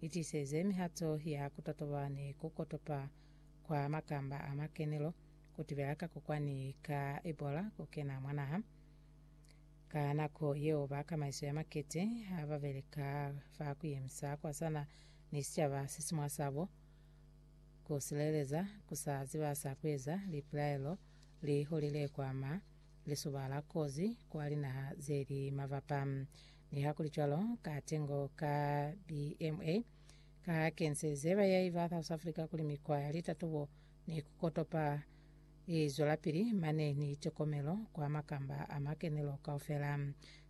itiseze mihato ya kutotoba ni kukotopa kwa makamba a makenelo, kutibela kakokwani ka Ebola kukena mwa naha. Ka nako yeo, ba kamaiso ya makete hababeleka fa kuyemisa kwasana ni sicaba sesimwa sabo, kusileleza, kusa ziba sa kueza, lipilaelo li hulile kwa ma lisuba la kozi kwa linaha zeli mabapa. Nihakulicwalo, katengo ka BMA ka kenzeze bayahi ba South Africa kuli mikwa ya litatubo ni ku kotopa i zwelapili mane ni tokomelo kwa makamba a makenelo kaufela.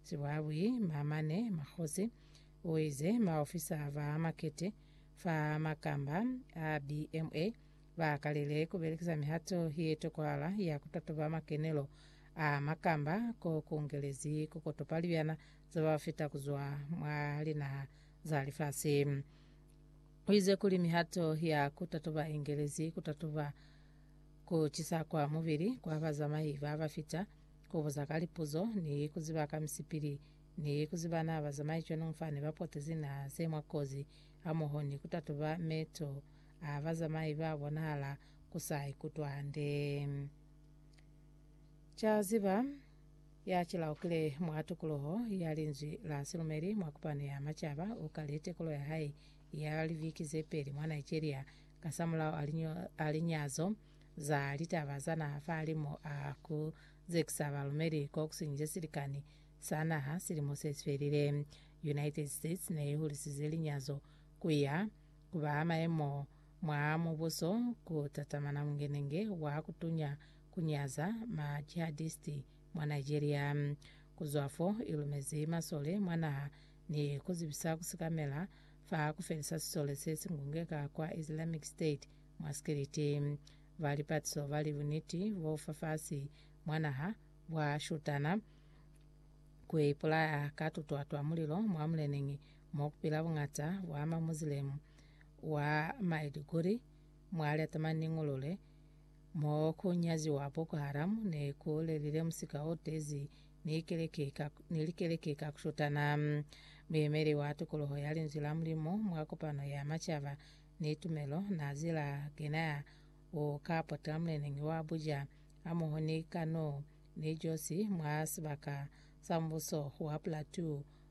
Sibuhabui Maamane Makgosi uize maofisa ba makete fa makamba a BMA Ba kalile ku belekisa mihato ye tokwala ya ku tatuba makenelo a makamba ko ku ngelezi ku kotopa libyana za ba fita ku zwa mwa linaha za lifasi. U ize kuli mihato ya ku tatuba i ngelezi ku tatuba ku cisa kwa mubili kwa bazamai ba ba fita, ku buza ka lipuzo, ni ku ziba ka misipili, ni ku ziba na bazamai cwanungu fani ba potezi naha ze mwa kozi, hamoho ni ku tatuba meto A bazamai ba bonahala ku sa ikutwa hande. Ca ziba, ya ci laukile mwa tukuluho ya Linzwi la Silumeli mwa Kupano ya Macaba u kali tekulo ya hae ya liviki ze peli mwa Nigeria kasamulaho a linyazo za litaba za naha fahalimu a ku zekisa balumeli ko kusinyize silikani sa naha silimo se sifelile. United States ne i hulisize linyazo ku ya Kuba maemo mwa mubuso ku tatamana mungenenge wa kutunya ku nyaza ma jihadisti mwa Nigeria. Ku zwa fo, i lumezi masole mwa naha ni ku zibisa ku sikamela fa ku felisa sisole se si ngungeka kwa Islamic State mwa Sikiliti. Ba lipatiso ba li buniti bo fafasi mwa naha bwa shutana ku ipulaya ka tutwa twa mulilo mwa muleneñi mo ku pila buñata bwa Mamuzilemu wa Maiduguri mwa lya tamaniñulule mo ku nyaziwa Boko Haram ne ku lelile musika o tezi ni keleke ka, ni likeleke ka ku shutana. Muyemeli wa tukuluho ya Linzwi la Mulimu mwa kopano ya macaba ni tumelo Nazila Genaya u ka potela muleneñi wa Abuja hamoho ni Kano ni Josi mwa sibaka sa Mbuso wa Plateau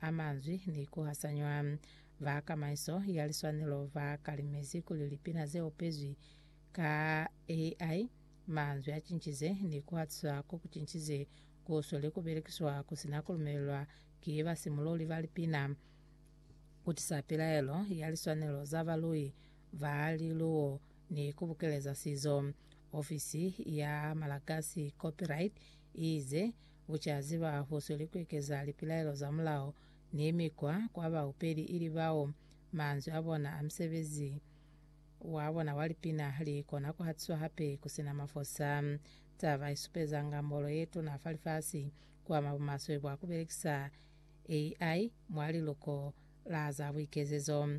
a manzwi ni ku hasanyiwa. Ba kamaiso ya liswanelo ba kalimezi kuli lipina ze opezwi ka AI manzwi a cincize ni ku hatiswa ko ku cincize ku sweli ku belekiswa ku si na ku lumelelwa ki basimululi ba lipina ku tisa pilaelo ya liswanelo za balui ba liluwo ni ku bukeleza sizo. Ofisi ya malagasi Copyright i ize, U ca ziba hahusuli kuekeza lipilaelo za mulao ni mikwa kwa baupeli ili bao manzwi a bona a musebezi wa bona wa lipina li kona kuhatiswa hape kusina mafosa. Taba i supeza ngambolo ye tuna fa lifasi ku ama bumaswe bwa ku belekisa AI mwa liluko la za buikezezo.